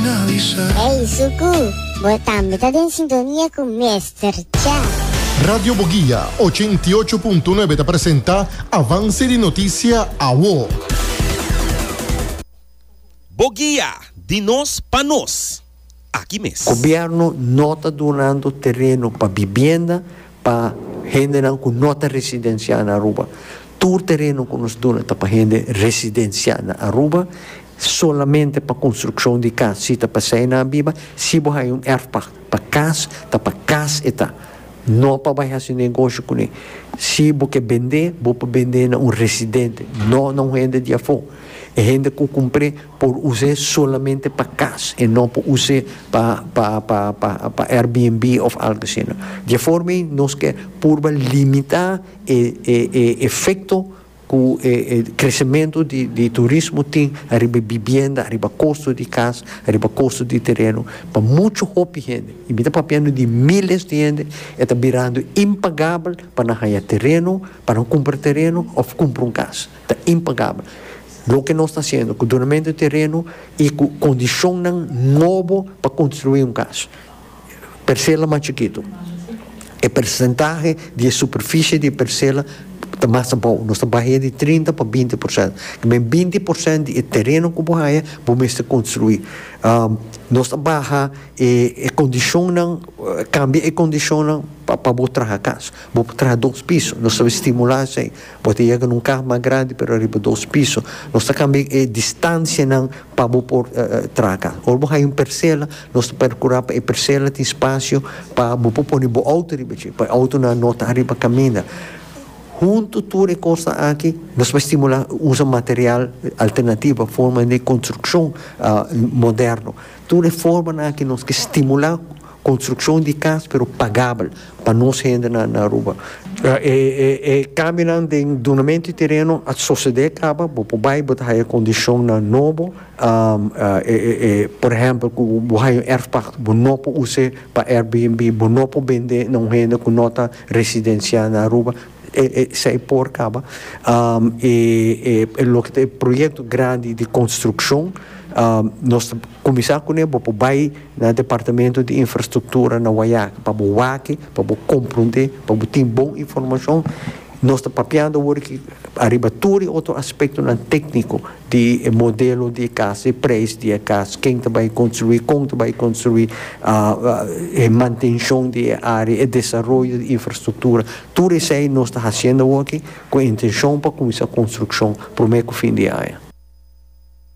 Ey Suku, bo tambe ta den sintonia cu Mester Cha. Radio Boguia ochenta i ocho punto nuebe ta presenta Avance di Noticia Awo. Boguia, di nos pa nos. Aki mes. Gobierno no ta dunando tereno pa bibienda Pa hendenan ku no ta residensiá na Aruba, tur tereno ku nos duna ta pa hende residensiá na Aruba, solamente pa konstrukshon di kas si ta pa sei nan biba, si bo haya un erfpag pa kas, ta pa kas e ta, no pa bai hasi negoshi kuné. Si bo ke bendé, bo por bendé na un residente, no na un hende di afó. E hende ku kumpré. por us'é solamente pa cas e no por us'é pa pa pa pa pa Airbnb of algo así no. Dje forma ei nos ke purba limita e e e efecto ku e e crecemento di di turismo tin ariba e bibienda, ariba costo di cas, ariba costo di tereno pa mucho hopi hende. Y mi ta papiando di miles di hende e ta birando impagable pa nan haya tereno, pa nan cumpra tereno of cumpra un cas. Ta impagabel loke nos ta hasiendo cu donamento di tereno y cu condicionnan nobo pa construi un cas. Percela mas chikito. E percentahe di e superficie di e percela ta mas abao. Nos ta bahia di trinta pa binti por cent. Ki men binti por cent di e tereno cu bo haya bo mester construi. Nos ta baha e condicionnan, cambia e condicionnan pa bo traha cas. Bo por traha dos piso. Nos ta stimula esey. Bo ta yega na un kah mas grandi pero riba dos piso. Nos ta kambia e distancianan pa bo por traga. Ora bo haya un persela nos ta percura pa e persela tin spacio pa bo por pone bo auto riba dje pa e autonan no ta ariba caminda. Hunto tur e cosnan aki nos por estimula usa material alternativo forma di construccion moderno. Tur e formanan aki nos ke stimula. Construccion di cas pero pagabel pa nos hende na Aruba. E cambionan den dunamento di tereno a socede caba, bo por bay bo ta haya condicionnan nobo, por ehempel cu bo haya un erfpacht bo no por us'e pa Airbnb, bo no por bend'e na un hende cu no ta residencia na Aruba, esey por caba. Loke ta e proyecto grandi di construccion nos ta. Kuminsá kuné bo por bai na Departamento di Infrastruktura na Wayaki pa bo wak, pa bo komprondé, pa bo tin bon informashon. Nos ta papiando awor aki ariba tur e otro aspektonan tékniko di e modelo di e kas, e preis di e kas, ken ta bai konstruí, kon ta bai konstruí, e mantenshon di e área, e desaroyo di infrastruktura. Tur esei nos ta hasiendo awor aki ku e intenshon pa kuminsá konstrukshon promé ku fin di aña.